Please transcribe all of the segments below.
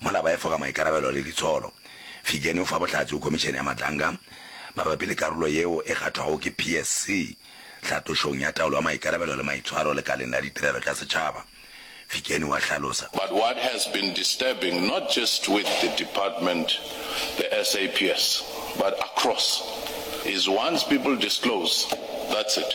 Mola ba efoga maikarabelo le ditsholo, Fijeni o fa bohlatse go Khomišene ya Matlanga mabapi le karolo yeo e kgathwago ke PSC tlhatlošong ya taolo ya maikarabelo le maitshwaro lekaleng la ditirelo tša setšhaba, Fijeni wa hlalosa. But what has been disturbing not just with the department, the SAPS, but across is once people disclose, that's it.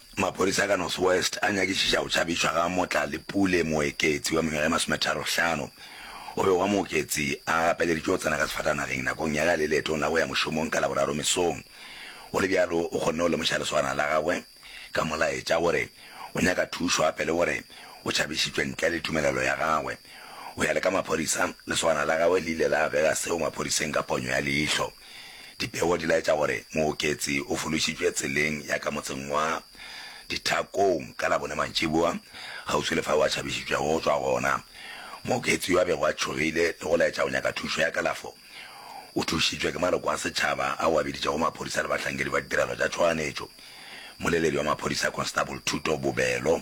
Maphodisa a ka North West a nyakišiša go tšhabišwa ga Motlalepule Moeketsi wa mengwaga e masometharohlano. O be wa Mooketsi a gapeleditšwe go tsena ka sefatanageng nakong ya gale leetong la go ya mošomong ka Laboraro mesong. Go le bjalo o kgonne go lemoša lesogana la gagwe ka molaetša gore o nyaka thušo gape le gore o tšhabišitšwe ntle le tumelelo ya gagwe. Go ya le ka maphodisa, lesogana la gagwe le ile la abega seo maphodiseng ka ponyo ya leihlo. Dipego di laetša gore Mooketsi o fološitšwe tseleng ya ka motseng wa Dithakong ka Labone mantšiboa, kgauswi le fao a tšhabišitšwego go tšwa gona. Mooketsi yo a bego a tšhogile le go laetša go nyaka thušo ya kalafo, o thušitšwe ke maloko a setšhaba ao a biditšego maphodisa le bahlankedi ba ditirelo tša tšhoganyetšo, Mmoleledi wa maphodisa Constable Thuto Bobelo.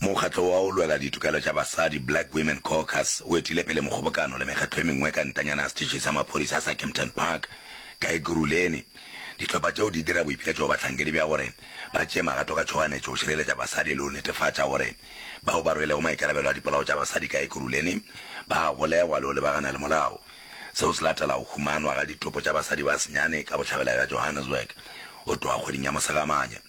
Mokgatlo wa go lwela ditokelo tša basadi, Black Women Caucus, o etile pele mokgobokano le mekgatlo e mengwe ka ntanyana ya setšhi sa maphodisa sa Kempton Park ka Ekurhuleni. Dihlopha tšeo di dira boipiletšo go bahlankedi bja gore ba tšee magato ka tšhoganetšo go šireletša basadi le go netefatša gore bao ba rwelego maikarabelo a dipolao tša basadi ka Ekurhuleni ba a golegwa le go lebagana le molao. Seo se latela go humanwa ga ditopo tša basadi ba senyane ka bohlabela bja Johannesburg go tloga kgweding ya Mosegamanya.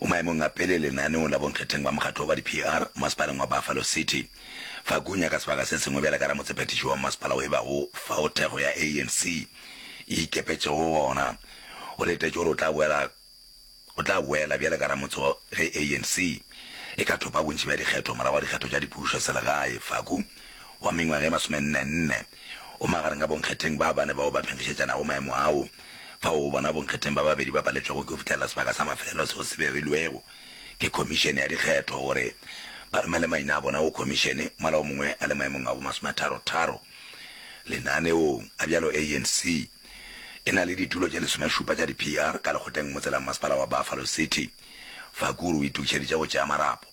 O maemong a pele lenaneong la bonkgetheng ba mokgatlo wa ba di-PR masepaleng wa Buffalo City. Fa Gunya ka sebaka se sengwe bjale ka ramotshephethiši wa mmasepala o ebago fao thekgo ya ANC e ikepetšego go gona, o letetše gore o tla boela o tla boela bjale ka ramotse ge ANC e ka thopa bontši bja dikgetho morago ga dikgetho tša dipušo selegae. Faku, wa mengwaga e masomenne-nne, O magareng ga bonkgetheng ba bane bao ba phenkgišetšanago maemo ao, fao o bona bonkgetheng ba babedi ba paletšwego ke go fihlelela sebaka sa mafelelo seo se berilwego ke Khomišene ya Dikgetho gore ba romele maina a bona go Khomišene, mola o mongwe a le maemong a bomasometharo-tharo lenaneong a bjalo. ANC e na le ditulo tše lesomešupa tša di-PR ka lekgotleng motse la mmasepala wa Buffalo City, fa Kuru o itokšeditše go tšea marapo.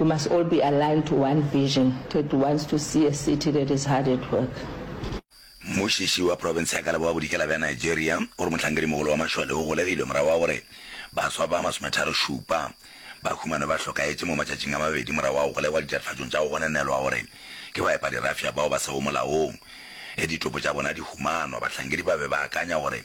We must all be aligned to one vision that wants to see a city that is hard at work. Mmušiši wa profense ya ka leboa-bodikela bja Nigeria o re mohlankedi-mogolo wa mašole o golegilwe morago ga gore baswa ba masometharo-šupa ba humanwe ba hlokaetše mo matšatšing a mabedi morago ga go golegwa ditatofatšong tša go gonenelwa gore ke baepadirafša bao ba sego molaong. Ge ditopo tša bona di humanwa, bahlankedi ba be ba akanya gore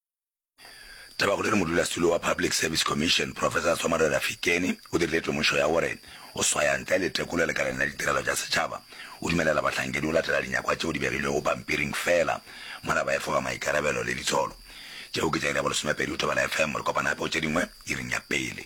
Taba gore modulasetulo wa Public Service Commission, Professor Somare Rafikeni, o dirile temošo ya gore go swaya ntle le tekolo lekaleng la ditirelo tša setšhaba o dumelela bahlankedi go latela dinyakwa tšeo di begilwego pampiring feela mola ba efoga maikarabelo le ditsholo. Tšeo ke tša iri ya bolesomepedi go Thobela FM. Re kopana gape go tše dingwe iring ya pele.